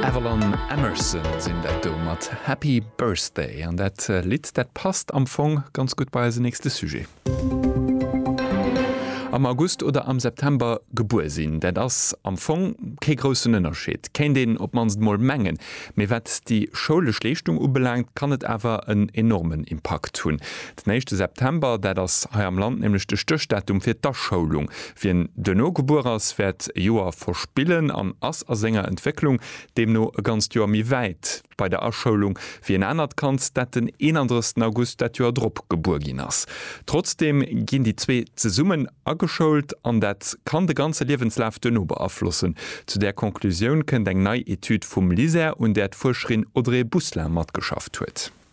Avalon Emerson sinn dat do mat Happy Birthday. An dat Lidd, dat passt am Fong ganz gutt bei eisen nächste Sujet. Am August oder am September gebuer sinn, dat ass am Fong kee groussen Ënnerscheed, kéint een op d'mannst emol mengen. Mee wat déi schoulesch Leeschtung ubelaangt, kann et awer en enormen Impakt hunn. Den éischte September, dat ass hei am Land nämlech de Stéchdatum fir d'Aschoulung. Wien duerno gebuer ass, wäert e Joer verspillen an ass a senger Entwécklung deemno e ganzt Joer méi wäit bei der Aschoulung wéi en anert Kand, dat den 31 August dat Joer drop gebuer ginn ass. Trotzdeem ginn déi zwee zesummen ageschoult an dat kann de ganze Liewenslaf duerno beaflossen. Zu där Conclusioun kënnt eng nei Etüd vum LISER, un där d'Fuerscherin Audrey Busselin matgeschafft huet.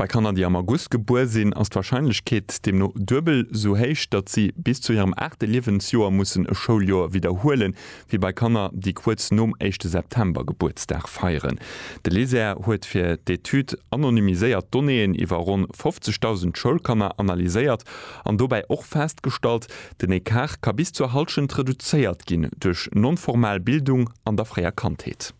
Bei Kanner, déi am August gebuer sinn, ass d'Warscheinlechkeet deemno duebel sou héich, datt si bis zu hirem aachte Liewensjoer mussen e Schouljoer widderhuelen, wéi bei Kanner, déi kuerz nom éischte September Gebuertsdag feieren. De LISER huet fir d'Etüd anonymiséiert Donnéeën iwwer ronn 50.000 Schoulkanner analyséiert an dobäi och festgestallt, den Ecart ka bis zur Hallschent reduzéiert ginn duerch non-formal Bildung an der fréier Kandheet.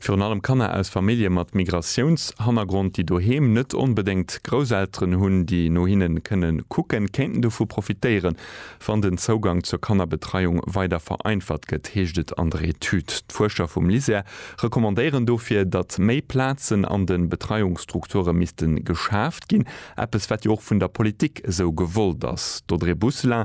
Virun allem Kanner aus Famillje mat Migratiounshannergrond, déi doheem net onbedéngt Grousselteren hunn, déi no hinne kënnen kucken, kéinten dovu profitéieren, wann den Zougang zur Kannerbetreiung weider vereinfacht gëtt, heescht et an der Etüd. D'Fuerscher vum LISER recommandéieren dofir, datt méi Plazen an de Betreiungsstrukture misste geschaaft ginn, eppes wat jo och vun der Politik esou gewollt ass. D'Audrey Bousselin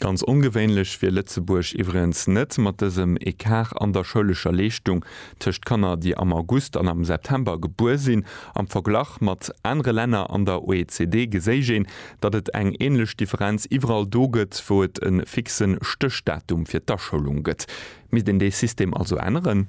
Ganz ongewéinlech wier Lëtzebuerg iwwregens net, mat dësem Ecart an der schoulescher Leeschtung tëscht Kanner, déi am August an am September gebuer sinn. Am Verglach mat anere Länner an der OECD geséich een, datt et eng änlech Differenz iwwerall do gëtt, wou et e fixe Stéchdatum fir d'Aschoulung gëtt. Misst een dee System also änneren?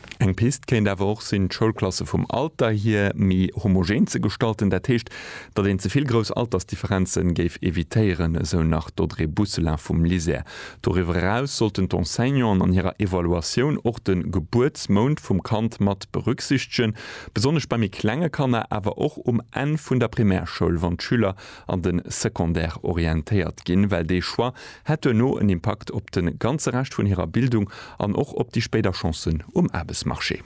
Eng Pist kéint awer och sinn, d'Schoulklasse vum Alter hier méi homogen ze gestalten, dat heescht, datt een ze vill grouss Altersdifferenze géif evitéieren, esou nach d'Audrey Bousselin vum LISER. Doriwwer eraus sollten d'Enseignanten an hirer Evaluatioun och de Gebuertsmount vum Kand mat berücksichtegen, besonnesch bei méi klenge Kanner, awer och um Enn vun der Primärschoul, wann d'Schüler an de Secondaire orientéiert ginn, well dee Choix hätt duerno en Impakt op de ganze Rescht vun hirer Bildung an och op déi spéider Chancen um Aarbechtsmarché.